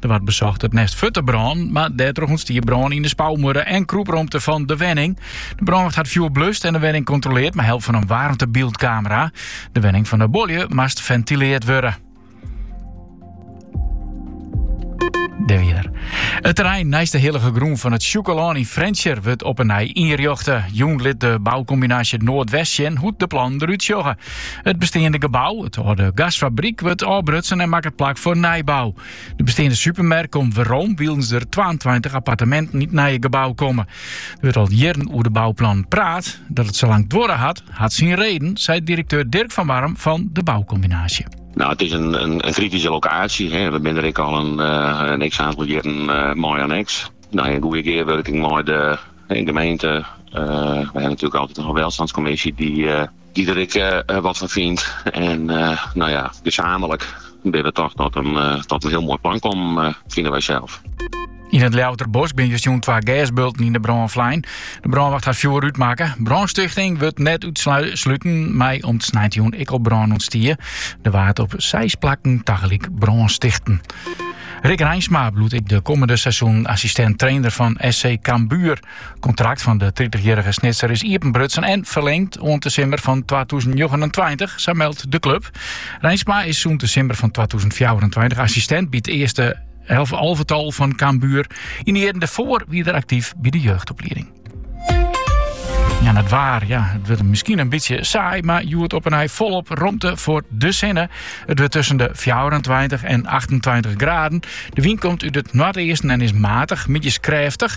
Der waard besocht it nest fuort te brânen, mar dêrtroch ûntstie brân yn de spouwmuorre en krûpromte fan de wenning. De brânwacht hat it fjoer blust en de wenning kontroleard mei help fan in waarmtebyldskamera. De wenning fan de buorlju moast fentileard wurde. It terrein neist de hillige grûn fan it Sjûkelân yn Frjentsjer wurdt op 'e nij ynrjochte. Jûn lit de boukombinaasje Noardwest sjen hoe't de plannen derút sjogge. It besteande gebou, it âlde gasfabryk, wurdt ôfbrutsen en makket plak foar nijbou. De besteande supermerk komt werom, wylens der 22 apparteminten yn it nije gebou komme. Der wurdt al jierren oer de bouplannen praat. Dat it sa lang duorre hat, hat syn reden, seit direkteur Dirk van Warm fan de boukombinaasje. Nou, het is een, een, een kritische locatie. Hè. We binne der ek al in, eh, in x-oantal jierren uh, eh, mei oan X. No, yn goede gearwurking mei de, de gemeente. Uh, we ha natuerlik altyd in welstânskommisje dy dy't der ek wat fan fynt. En no ja, gezamenlik binne we toch tot in hiel moai plan kommen, fine wy sels. Yn it Ljouwerter Bosk binne justerjûn twa gêsbulten yn de brân flein. De brânwacht hat it fjoer útmakke. Brânstichting wurdt net útsluten mei om't sneintejûn ek al brân ûntstie. Der waard op seis plakken tagelyk brân stichte. Rik Reinsma bliuwt ek de kommende seizoenen assistent-trainer fan SC Cambuur. It kontrakt fan de tritichjierrige Snitser is iepenbrutsen en ferlingd oant de simmer fan twatûzen njoggenentweintich, sa meldt de klub. Reinsma is sûnt de simmer fan twatûzen fjouwerentweintich assistint by it earste alvetal fan Cambuur. Yn de jierren dêrfoar wie er aktyf by de jeugdoplieding. Ja, it waar, ja, it wurdt miskien in bytsje saai, mar hjoed op 'e nij folop romte foar de sinne. It wurdt tusken de 24 en 28 graden. De wyn komt út it noardeasten en is matich, middeis krêftich.